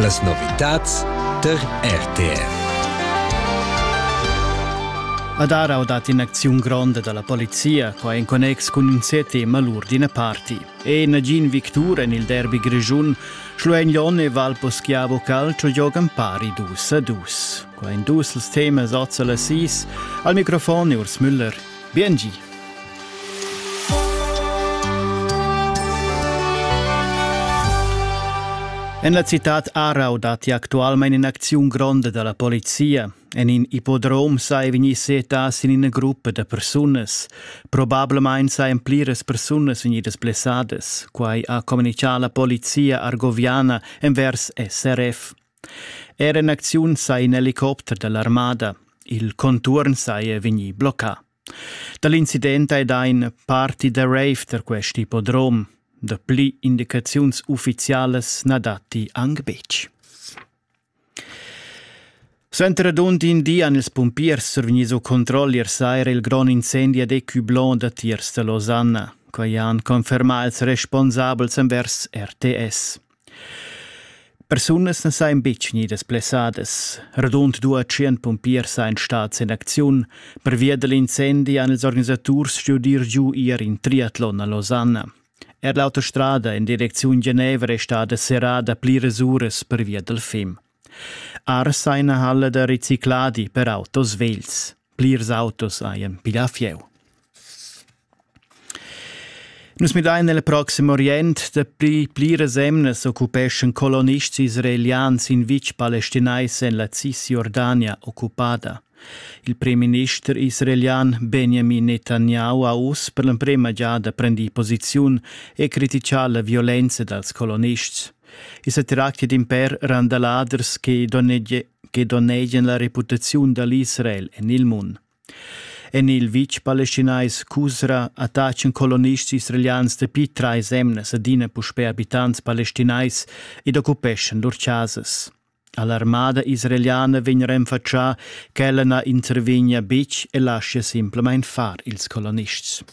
Las novitads der RTR. Ad Arau dat in'acziun gronda dalla polizia, qua en connex cun in sete malur d'ina parti. E nagin victur en il derby grischun, Schluegnone e Valposchiavo Calcio giogan pari dus a dus. Qua en dus els temas Ozzala Sis, al microfon Urs Müller Biengi! En la citad Aarau datti actualmain in'acziun gronda da la polizia. En in ippodrom sai vegnir setà sin ina gruppa da persunas. Probablamain sajan pliras persunas vegnidas blessadas. Quai ha communitgà la polizia argoviana envers SRF. Era in acziun sa in helicopter dall'armada. Il contuorn saja vegnì bloccà. Da l'incident hai dà in party da rave tar quest ippodrom. Dapli indicaziuns uffizialas na datti anc betg. Suenter radund in di han ils pumpiers survegni su controll ier saira il grond incendi ad Ecublanc datiers da Losanna. Quai han confermà ils responsabels envers RTS. Persunas na sajan betg gnidas blessadas. Radund dua tschient pumpiers sajan stads en acziun. Pervia da l'incendi han ils organisaturs stuì giu ir in triatlon a Losanna. Er l'autostrada en direcziun Genevra è stada serrada pliras uras pervia dal fim. Ars ha ina halla da ricicladi per autos vegls. Plirs autos hajan pilà fieu. Nus midain el proxim Orient dapi pliras emnas occupeschan colonists israelians in vitg palestinais en la Cisjordania occupada. Il premierminister israelian Benjamin Netanyahu ha uss per l'emprema giada prendì posiziun e criticà la violenza dals colonists. I sa tracti d'in pèr randaladers che donnegie che donnegian la reputaziun dall'Israel en il mund. En il vitg palestinais Cusra attachan colonists israelians dapi trais emnas adina puspè abitants palestinais ed occupeschan lur chasas. All'armada israeliana vegn renfatschà ch'ella na intervegnia betg e laschia simplamain far ils colonists.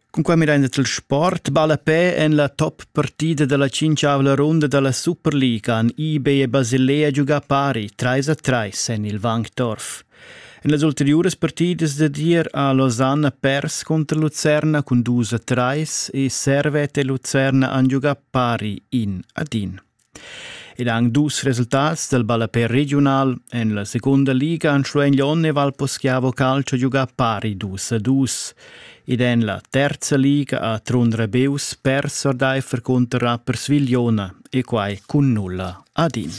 Cunquai midain els il sport ballapè en la top partida da la tschintgavla runda da la Superliga han IB e Basilea giugà pari trais a trais en il Wankdorf. En las ulteriuras partidas dad ier ha Losanna pers cunter Lucerna cun dus a trais e Servete e Lucerna han giugà pari in ad in. Ed anc dus resultats dal ballapè regiunal. En la segunda liga han Schwenglon e Valposchiavo Calcio giugà pari dus a dus. Ed en la terza liga ha Trun Rebeus pers ordaifer cunter Rapper Svigliona e quai cun nulla ad in.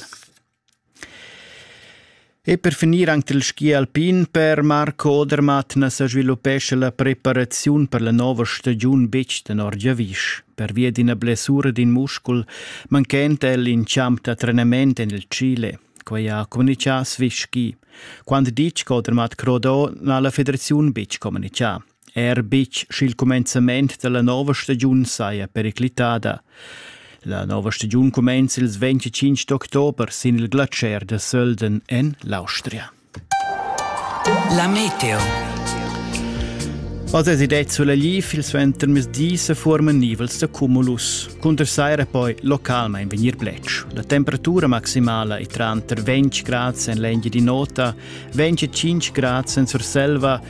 E per finir anc il ski alpin per Marco Odermatt na sa sviluppescha la preparaziun per la nova stagiun betg tenor giavisch. Pervia d'ina blessura d'in muscul manchenta el in champ da trenament en il Chile. Quai ha communitgà Swiss Ski. Quant ditg che Odermatt croda, n'ha la federaziun betg communitgà. Er betg sch'il cumenzament da la nova stagiun saja periclitada. La nova stagiun cumenza ils 25 d'october sin il glatscher da Sölden en l'Austria. La meteo. Als es ideet sulla lief il suenter mesdi se formen nivels da cumulus. Cunter saira poi localmain vegnir blec. La temperatura maximala è tranter 20 grad en l'engi di nota, 25 grad en Surselva